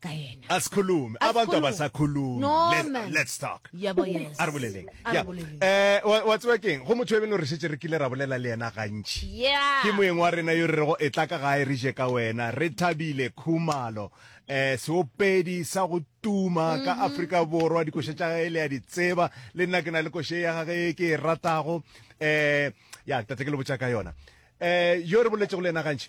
ka yena. Asikhulume. Abantu abasakhulumi. No, Let, man. let's talk. Ya bo, yes. A re boleleng. A re Ya. boleleng. Eh, wa wa tseba keng? Go motho e beno re šetse re kile ra bolela le yena gantši. Yeah. Ke moeng wa rena yo re rego e tla ka gae re je ka wena. Re thabile Khumalo. Eh, seopedi sa go tuma ka Afrika Borwa dikoša tša gae le ya di tseba. Le nna ke na le koše ya gage e ke e ratago. Eh, ya tate ke le botša ka yona. Eh, yo re boletšego le yena gantši.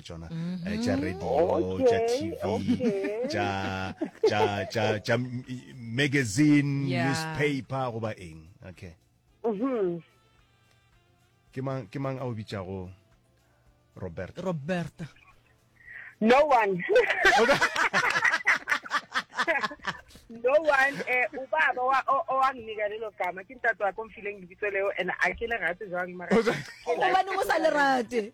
tsona eh, tša radio tša tv tša tša tša tša m- magazine Yeah. newspaper goba eng okay Mhm. ke mang ke mang a o bitšago robert roberta no one no one eh ubaba wa o- owanginika lelo gama ke ntate wakho mfileng lebitso leo and a ke le rate jwang mara gobaneng o sa le rate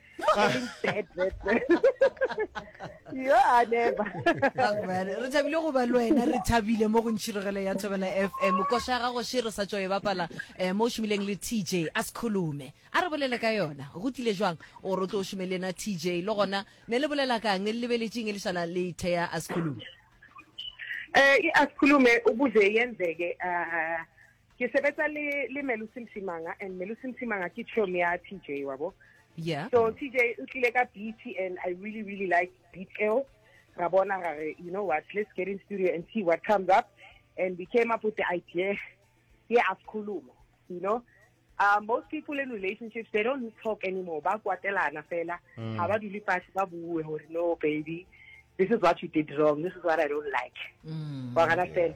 yo a never re thabile go ba le wena re thabile mo go ntšhirogelo ya thobela f m koša ya gago še re sa tšo e bapala um mo o šomileng le t j a se kholume a re bolele ka yona go tlile jwang o re o tlo o šome le ena t j le gona ne le bolela kang le lebeletseng e le šana le thea a se kholume um e a se kholume o buze yenzeke um ke sebetsa le le Melusi Msimanga and Melusi Msimanga ke chom ya TJ wa bo yeah so TJ o tlile ka beat and I really really like beat eo ra bona ra re you know what let's get in studio and see what comes up and we came up with the idea yeah asikhulume you know uh, most people in relationships they don't talk anymore ba kwatelana fela mm. ga ba dule fatshe ba bue gore no baby this is what you did wrong this is what i don't like mm. wa gana fela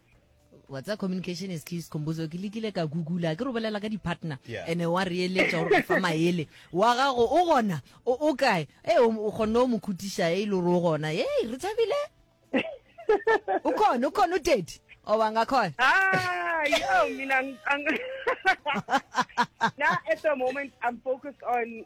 wa tsa communication is key scombozo ke lekile ka googla ke re bolela ka di-partner ene wa re eletša gore go fa maele wa gago o gona o kae e o kgonne o mo khutiša e le gore o gona e re tshabile o khone o khone o tedi o banga khone mina na at the moment i'm focused on